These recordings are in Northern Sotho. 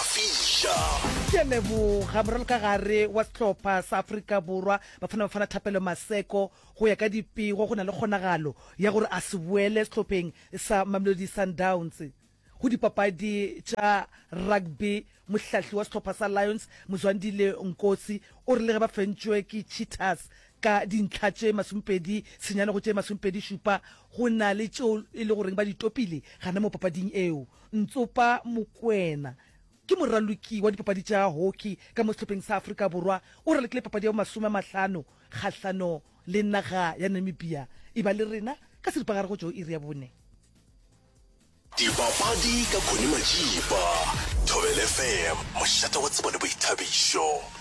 Fiša! Ke a leboga moralokagare wa sehlopha sa Afrika Borwa, Bafana Bafana Thapelo Maseko. Go ya ka dipego, go na le kgonagalo ya gore a se boele sehlopheng sa Mamelodi Sundowns. Go dipapadi tša rugby, mohlahli wa sehlopha sa Lions, Mzwandile Nkosi, o re le ge ba fentšwe ke Cheetahs ka dintlha tše masomepedi senyane go tše masomepedi šupa, go na le tšeo e le goreng ba di topile gana mo papading eo. Ntsopa Mokoena ke moraloki wa dipapadi tša hockey ka mo sehlopheng sa Afrika Borwa. O ralokile papadi ya bomasome a mahlano kgahlano le naga ya Namibia. E ba le rena ka seripagare go tšwa go iri ya bone. Dipapadi ka Connie Matšipa, Thobel FM, mošate wa tsebo le boithabišo.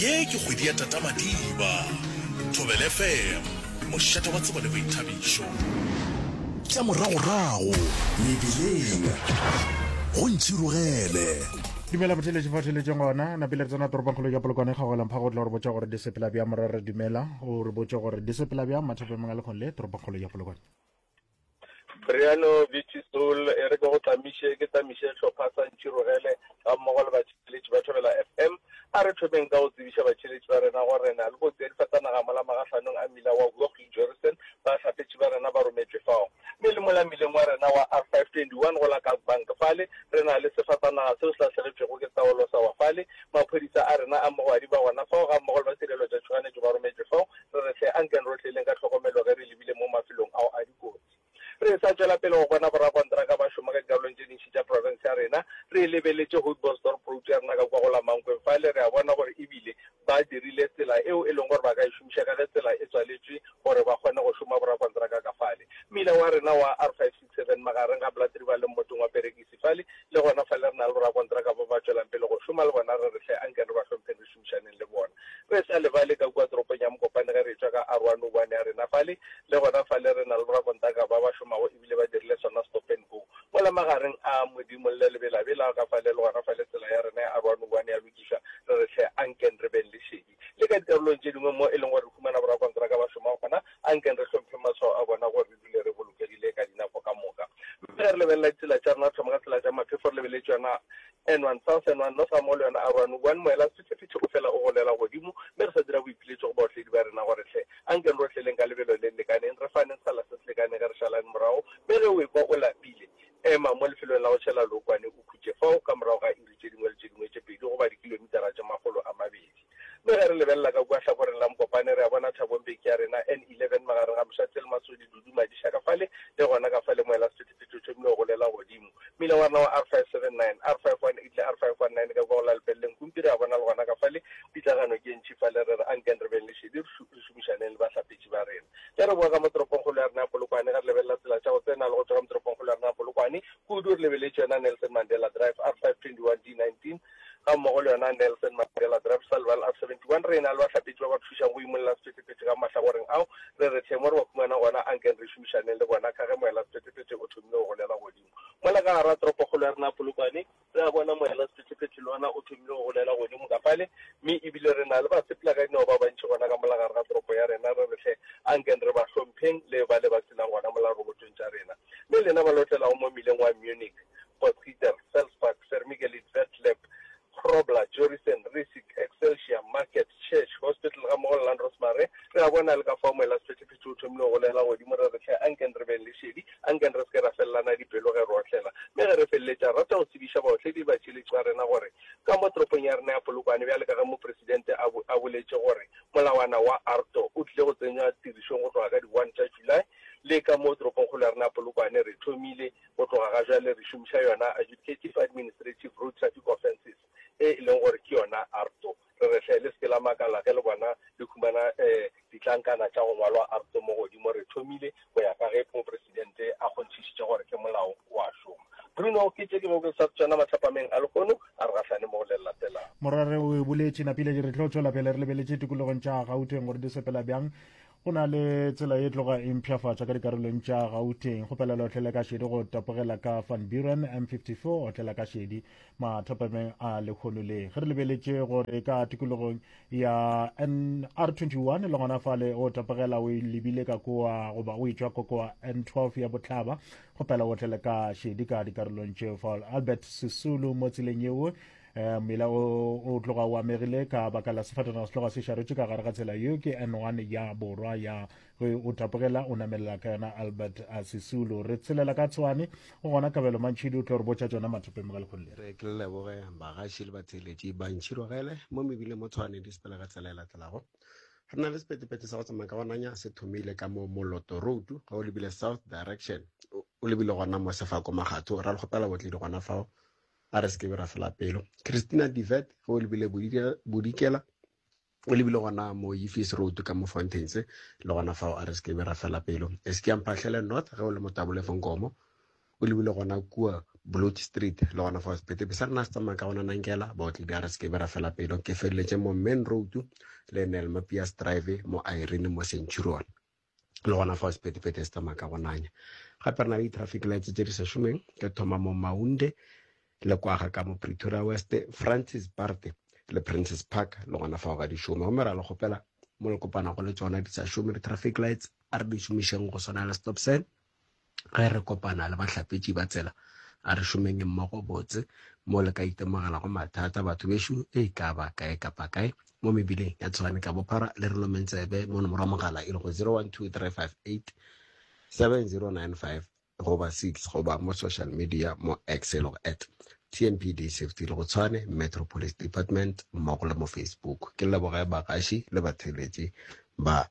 Ye ke kgwedi ya Tata Madiba. Thobela FM, mošate wa tsebo le boithabišo. Tša moragorago mebileng go ntšhirogele. Dumela botheletše fa theletšeng gona napile re tsena toropongkgolo ya polokwane kgagolang phago o tla re botša gore di sepela bja morara dumela o re botše gore di sepela bja mathapemong a lekgong le toropongkgolo ya polokwane Briano Beauty Soul e re ke go tlamiše ke tlamiše hlopha sa Ntšhirogele ga mmogo le batšheletši ba Thobela FM. A re thomeng ka go tsebiša batšheletši ba rena gore re na le kotsi ya difatanaga mola magahlanong a mmila wa Huaxing-Jorestan. Bahlapetši ba rena ba rometšwe fao mme le mola mmileng wa rena wa R521 go la Kalkbank fale re na le sefatanaga seo se lahlegetšwego ke taolo sa wa fale. Maphodisa a rena a mogwadi ba gona fao ga mmogo le ba Sereletšotšhoganetšo ba rometšwe fao. Re re hle ankeng ro tleleng ka tlhokomelo ge re lebile mo mafelong ao a dikotsi. Re sa tšwela pele go bona borakontraka ba šoma ka dikarolong tše dintši tša profense ya rena, re lebeletše Houtbosdorp Route ya rena ka kua go la Mankweng fale, re a bona gore e bile ba dirile tsela eo e leng gore ba ka e šomiša ka ge tsela e tswaletšwe gore ba kgone go šoma borakontraka ka fale. Mmila wa rena wa R561. Seven magareng ga Blatteriba le mmotseng wa Perekisi fale, le gona fale re na le borakontraka ba ba tšwelang pele go šoma le bona, re re hle anke re ba hlompheng re šomišaneng le bona. Re sa lebale ka kua toropong ya Mokopane ge re etšwa ka Arwa no one ya rena fale, le gona fale re na le borakontraka ba ba šomago e bile ba dirile sona stop and go mola magareng a Modimo le Lebelabela ka fale, le gona fale tsela ya rena ya Arwa no one ya lokišwa, re re hle anken re beng le šedi. le ka dikarolong tše dingwe mo e leng gore re humana borakontraka ba šoma gona, a nkeng re hlompheng matshwao a bona gore re dule re bolokegile ka dinako ka moka. Mme ge re lebelela ditsela tša rena, re thoma ka tsela tša maphefo re lebeletse yona N1 South, N1 North gammogo le yona R1 One Moela, sephethephethe o fela o golela godimo, mme re sa dira boipiletšo go baotledi ba rena gore, Hle, a nkeng re otleleng ka lebelo le le lekaneng, re faneng sekgala se se lekaneng ge re šalane morago, mme ge o ekwa o lapile, ema mo lefelong la go tšhela lookwane o khutše fao ka morago ga iri dikilomita tše dingwe le tše dingwe tše pedi goba dikilomitara tše makgolo a mabedi. Mme ge re lebelela ka kua hlakoreng la Mokopane, re a bona Thabong Beke ya rena, N11, magareng ga Moshatse le Masodi, Dudu, Madiša ka fale, le gona ka fale mo elasephethephethe o thomile go golela godimo. Mmila wa rena wa R579, R518 le R519 ka kua go la Lepeleleng Kumpi re a bona le gona ka fale. Pitlagano ke e ntši fale. Re re, Ankeng re beng le šedi, re šomišaneng le bahlapetši ba rena. Ge re boa ka mo toropongkgolo ya rena ya Polokwane, ge re lebelela tsela tša go tsena le go tšwa ka mo toropongkgolo ya rena ya Polokwane, Kudu re lebeletše yona Nelson Mandela Drive, R 521 D 19, gammogo le yona Nelson Mandela Drive, Sullivan R 71. Re ena le bahlapetši ba ba thušago go imolla sephethephethe ka mahlagoreng ao. Re re hleng mo re ba humana gona, ankeng re šomišaneng le bona ka ge moelasephethephethe o thomile go golela godimo mola ka gar'a toropokgolo ya rena Polokwane. Re a bona moelasephethephethe le ona o thomile go golela godimo ka fale, mme e bile re na le basepelakadinao ba bantši gona ka mola gare ga toropo ya rena. Re re hle, ankeng re ba hlompheng le bale ba se nang gona mola robotong tša rena. le lena ba lotlelago mo mmileng wa Munich, Potsiter, Felsbach, Vermigelid, Wertlepp, Grobler, Jorissen, Riesig, Excelsior, Market, Church, Hospital gammogo le Landrosmare, re a bona le ka fao moelasephethephethe o thomile go golegela godimo, re re, Hle, ankeng re beng le šedi, ankeng re se ke ra felelana dipelo ge re otlela. Mme ge re feleletša, re rata go tsebiša baotledi ba tšheletšo ya rena gore ka mo toropong ya rena ya Polokwane, bjale ka ge Mopresidente a, a boletše gore molawana wa ARTO o tlile go tsenywa tirišong go tloga ka di one tša July, Le ka mo toropongkgolo ya rena ya Polokwane re thomile go tloga ga jwale re šomiša yona Adjudicative Administrative Road Traffic Offences e e leng gore ke yona ARTO. Re re hle le se ke la makala ge le bona le humana ditlankana tša go ngwalwa ARTO mo godimo. Re thomile go ya ka ge Mopresidente a kgonthišitše gore ke molao o a šoma. Bruno ke tše dingwe ke sa tšona matlapameng a lehono a re gahlane mo go le latelago. Morwarre o e boletše, Napile ke re tlo tšwela pele re lebeletše tikologong tša Gauteng gore di sepela bjang. go na le tsela e tloga e mpšhafatša ka dikarolong tša gauteng kgopelelo otlela ka šedi go tapogela ka van buren m54 otlela ka šedi mathapameng a lekgono le ge re lebeletše gore ka tikologong ya nr21 le gona fale o tapogela o lebile ka koa goba o etšwa kokoa n12 ya botlhaba kgopela otlele ka šedi ka dikarolong tšeo fa albert sesulu mo tseleng yeo um mela o tloga o amegile ka baka la sefatanaga se tloga se šaretše ka gare ga tsela yo ke n one ya borwa ya ge o tapogela o namelela ka yona albert a sesulu re tshelela ka tshwane go gona kabelo mantšhidi o tlo re botša tsona mathopeng ga lekgolo le re ke leboge bagaši le batheeletši ba ntšhirogele mo mebileng mo tshwane di sepele ga tsela e latelago re na le sepetepete sa go tsamaya ka gonanya se thomile ka mo moloto road ga o lebile south direction o lebile gona mo sefako magatho ra le kgopela botledi gona fao A re se ke be ra fela pelo. Christina de Wet, ge o lebile Bodikela, o lebile gona mo Yifis Road ka mo Fountains, le gona fao a re se ke be ra fela pelo. E se ke ya mphahlele North, ge o le Motabole fo Nkomo, o lebile gona kua Bloot Street, le gona fao sepetepe sa rena se tsamaya ka gona Nankela, baotledi a re se ke be ra fela pelo. Ke feleletše mo Main Road le Nel Mapias Drive mo Irene mo Centurion. le gona fa sepetepete se tsamaya ka go nanya gape re na le di-traffic lights tse di sa šomeng ke thoma mo maunde le kwaga ka mo pretoria west francis parte le princess park le gona fao ga di šome gomme ra le kgopela mo le kopanago le tsona di sa šome di-traffic lights a re di šomišeng go swana le stop sign Ge re kopana le bahlapetši ba tsela, a re šomeng mmogo botse. Mo le ka itemogelago mathata, batho bešo, e ka ba kae kapa kae mo mebileng ya Tshwane ka bophara, le re lomeng tsebe mo nomoro ya mogala e lego 0123587095 goba 6 goba mo social media mo X e lego at TMPD Safety le go Tshwane Metro Police Department mmogo le mo Facebook. Ke leboge bagaši le batheeletši ba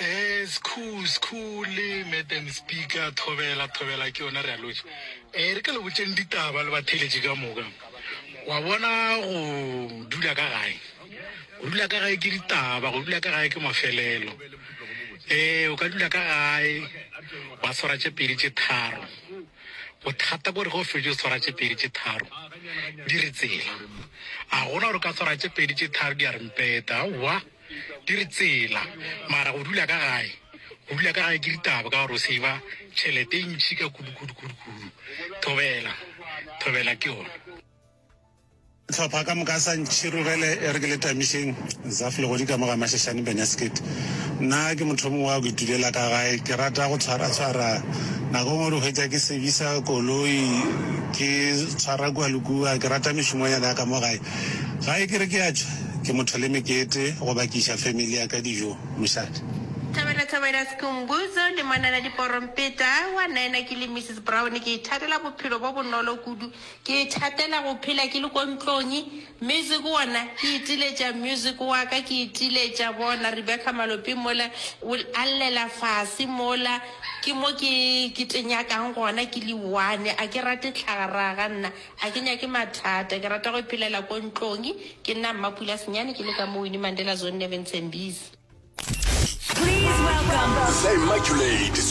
Ee, Skhou, Skhou le Madam Speaker, thobela, thobela, ke yona re a lotšha. Ee, re ka le botšeng ditaba le batheeletši ka moka. Wa bona go dula ka gae, go dula ka gae ke ditaba, go dula ka gae ke mafelelo. Ee, o ka dula ka gae, wa swara tše pedi tše tharo. Bothata kore ge o fetše o swara tše pedi tše tharo, di re tsela. A gona gore o ka swara tše pedi tše tharo di a re mpeta, aowa. Di re tsela, mara go dula ka gae, go dula ka gae ke ditaba ka gore o save-a tšhelete e ntši ka kudu, kudu, kudu, kudu. Thobela, thobela ke yona. Hlopha ka moka sa ntšhirogele e re ke le tamišeng Zaf legodi ka mo ga Mashashane Benasket. Nna ke motho mongwe wa go itulela ka gae, ke rata go tshwara tshwara nako ngwe di hwetša ke sevisa koloi, ke tshwara kua le kua, ke rata mešomonyana ya ka mo gae. Gae ke re ke a tšwa, ke motho le mekete, go bakiša family ya ka dijo, mošate. Thabela Thabela Sikhumbuzo, Dimanana Diporompeta, wa nnaena ke le Missus Brown, ke ithatela bophelo bo bonolo kudu, ke ithatela go phela ke le ko ntlong, music wona ke itiletša music wa ka, ke itiletša bona Rebecca Maloping mola o a llela fase mola, ke mo ke ke tenyakang gona ke le one, a ke rate tlhagaraga nna, Ga ke nyake mathata, ke rata go iphelela ko ntlong. Ke nna Mmapula Senyane, ke le ka mo Winnie Mandela Zone Nevin Sembisi. Please welcome. Sa Immaculate.